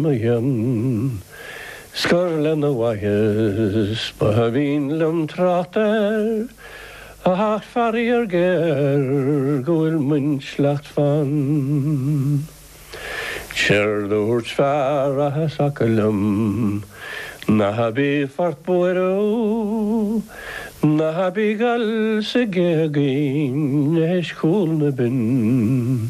Maíonn Scoir lena mhaitheas, ba aoibhinn liom trácht air ach faraor géar, go bhfuil m'intleacht fann. Séard a dhúirt fear acu liom, ná bíodh ort buaireamh, ná bíodh gal sa ghéagaín, éist chúl na binn.